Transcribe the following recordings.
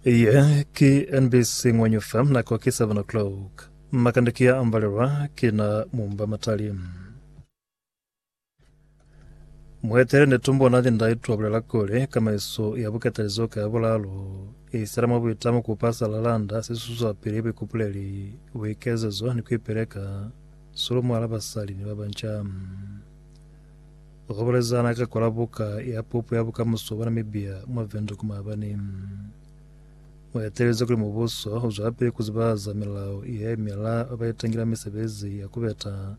Iye ki NBC Ngwanyufa nako ki 7 o'clock. Makande ki ya ambalelwa ki na mumba matali. Muetele ne tumbo na linda itwa bulela kuli kamaiso ya bukatalizo ka ya bulalo isela mwa buitamo ku pasa lalanda sesuswa pili buikupuleli buikezezo ni kuipeleka sulu mwala basali ni babanca. Ku bulezana ka kola buka ya pupo ya bukamuso bwa Namibia mwa Windhoek maabani, mu etelezi kuli mubuso u zwelapili ku zibahaza milao ye mela ba ba itangila misebezi ya ku beta,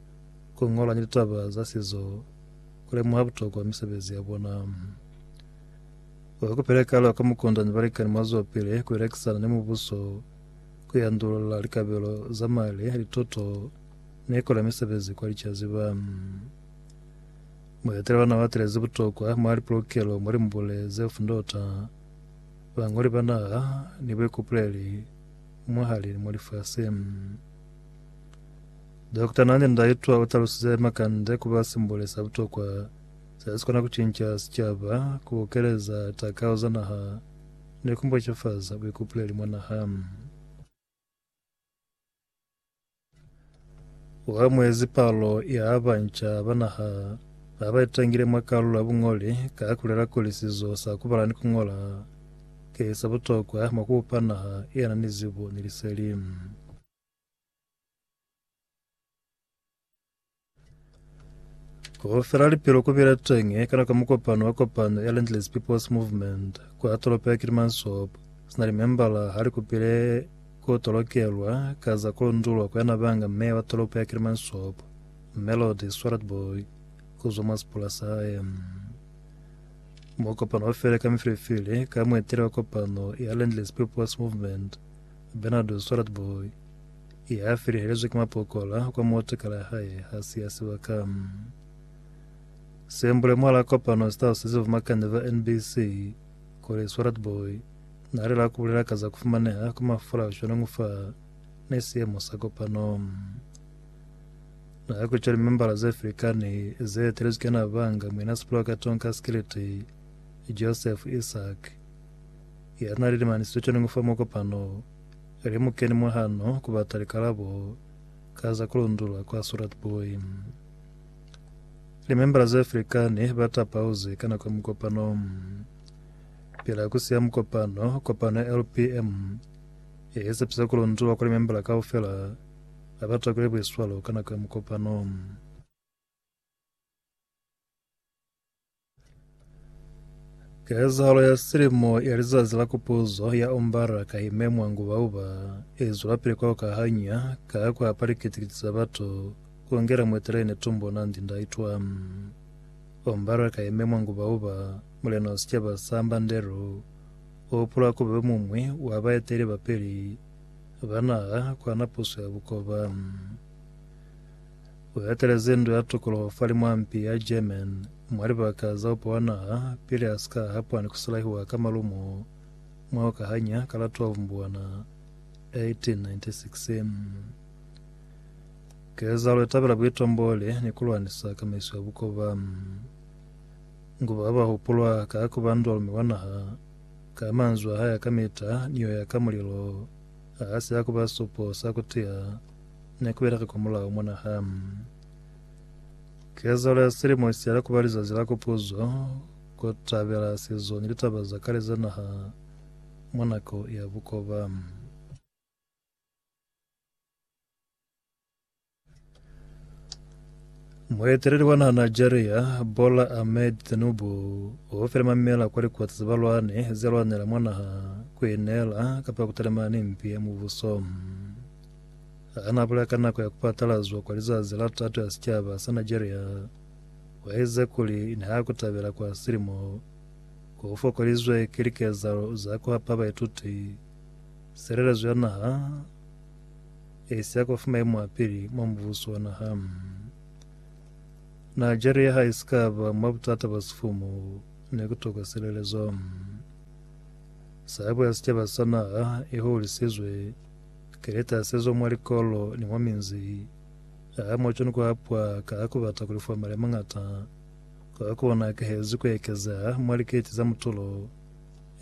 ku ñola ni litaba za sizo, ku lemuha butokwa misebezi ya bona. Ku ikupile kale kwa mukundani balikani mwa zwelapili ku elekisana ni mubuso, ku yandulula likabelo za mali, lituto, ni ku la misebezi kwa licaziba. Muetele ona uatelezi butokwa mwa lipolokelo mwa limbule zeo fundota, bañoli ba naha, ni buikupuleli mwahali mwa lifasi. Dokota Nandi Ndaitwah utalusize makande kuba simbole sa butokwa sesikona kucinca sicaba, kubukeleza takao za naha, ni kumbocefaza buikupuleli mwa naha. Wa mwezi palo ya banca ba naha ba ba itangile mwa kalulo ya buñoli ka kulela kuli sizo sa kubala ni kungola ki sa butokwa mwa kubupa naha iyana ni zibo ni liseli. Go fela lipelo ku bile teñi ka nako ya mukopano wa kopano ya Landless People's Movement kwa tolopo ya Kilimansob. Sina limembala ha li kupile ku tolokelwa ka za ku lundulwa kwa yana banga meya wa tolopo ya Kilimansob, Melody Swartbooi, ku zwa mwa sipula sahae. Mukopano wa fele ka mifilifili ka mueteli wa kopano ya Landless People's Movement, Bernardo Swartbooi. Ye a felehelezwe ki mapokola kwa motakala ya hae ha si ya sibaka. Sembule mwal'a kopano si talusize bumakanya ba NBC kuli Swalert Booi n'a alela ku bulela ka za ku fumaneha kwa mafula shwan'o fa ne siemo sa kopano. N'a kutwa limembala ze filikani ze etelezwi ki ana banga Muina Sipoloka Tonka Skiliti, Joseph Isaac, ya n'a lilimanisizwe shwan'o fa mukopano Lemukeni mwa hano ku bata likalabo ka za ku lundulwa kwa Surat Buhi. Limembala ze felikani ba tapauzi ka nako ya mukopano. Pila ku siya mukopano, kopano ya LPM ye i sepisa ku lundulwa kwa limembala kaufela ba ba takwile buiswalo ka nako ya mukopano. Kezahalo ya silimo ya lizazi la kupuzo ya Umbara ka ime mwa nguba-uba e zwelapili kwa ukahanya ka ku hapa likiti-kiti za batu ku ngela muitelene Tumbo Nandi Ndaitwah. Umbara ka ime mwa nguba-uba, mulena wa sicaba sa Mbandero u hupulwa ku ba yo muñwi wa baeteleli ba peli ba naha ku hana puso ya bukoba. U etelezi ndu ya tukuluho fa limwampi ya German mwa libaka za upa wa naha pili a si ka hapwa ni ku sulahiwa ka malumo mwa ku kahanya ka la 12 Mbwana 1896. Kezahalo i tabela buitomboli ni ku lwanisa kamaiso ya bukoba. Ngu ba ba hupulwa ka ku ba ndwalume wa naha, ka manzwi a hae a kamita ni yo ya ka mulilo, ha si ya ku ba supo sa ku tiya, Ne ku beleka kwamulaho mwa naha. Kezalo ya silimo isiyala kuba lizazi la kupuzo, ku tabela sizo ni litaba za kale za naha mwa nako ya bukoba. Mueteleli wa naha Nigeria, Bola Ahmed Tinubu, o file mamela kwa likoti za balwani ze lwanela mwa naha ku inela kapa ku talimana ni mpi ya mubuso. ha na bula ka nako ya ku patalazwa kwa lizazi la tato ya sicaba sa Nigeria, wa eziza kuli ni ha ku tabela kwa silimo ko ku fokolizwe ki likezalo za ku hapa baituti silelezo ya naha e si ya kwa fa maimo a pili mwa mubuso wa naha. Nigeria ha i si ka ba mwa butata bwa sifumu, ne ku tokwa silelezo. Sabo ya sicaba sa naha i hulisizwe. Ki lita sezo mwa likolo ni mwa minzi. Aa, mwa cwani kwa pwa ka ha ku bata kuli fwa mali a mañata. Kwa kona a kahezi ku ekeza mwa liketi za mutulo,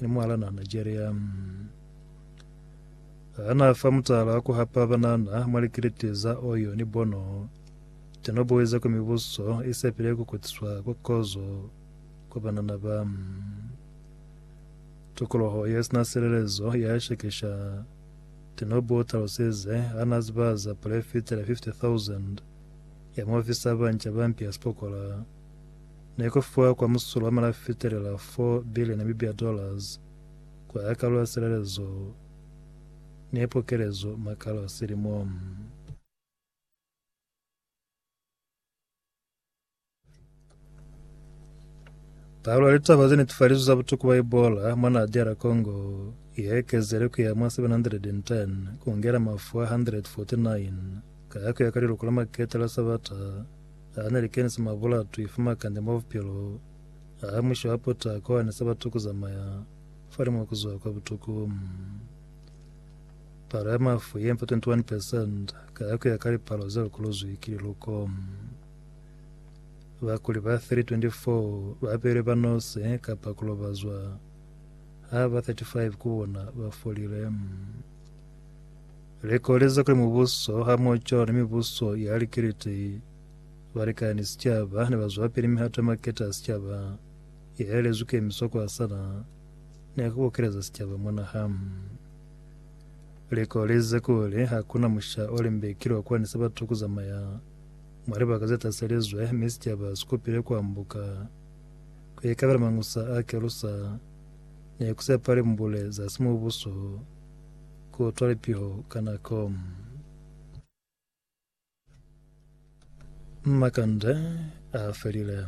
ni mwahala na Nigeria. Ha na fa mutala wa ku hapa banana mwa likiliti za Oyo ni Bono, teno boi za kwa mibuso i sepile ku kutiswa kwa kozo kwa banana ba. Tukoloho ye sina silelezo ya shekesha Tinobu o talusize ha na ziba za pule fitela 50,000 ya maofisa a banca ba mpi ya sipokola ne ku fiwa kwa musulo wa mali a fitelela 4 billion Namibia dollars ku aha kalu ya silelezo ne pokelezo makalo a silimo. Palo ya litaba ze netefalizwi za butuku bwa Ebola mwa naha DR Congo ye ekezele ku ya mwa 710 ku ngela mafu a 149 ka ya ku ya ka liluko la makete la Sabata a ne li kenise mwa bulatwi fa makande mwa bupilo a musho a putako a ne sa batu ku zamaya fa li mwa ku zwa kwa butuku. Palo ya mafu ye mpa 21 percent ka ya ku ya ka lipalo ze lukolozwi ki liluko. Bakuli ba 324 ba beilwe ba nose kapa ku lobazwa, ha ba 35 ku bona ba folile. Likoleza kuli mubuso hamoco ni mibuso ya likiliti ba likana ni sicaba ne ba zwapili mihato ya maketa a sicaba ye elezwi kemiso ku hasana ni ku bokeleza sicaba mwa naha. Likolezi kuli hakuna musha o limbekilwe kwa ni Sabato ku zamaya mwa libaka ze taselizwe, mi sicaba si kupile ku ambuka ku ikabela mangusa a kelusa ni ku sepa limbule za simubuso ku utwa lipiho ka nako. Makande a felile.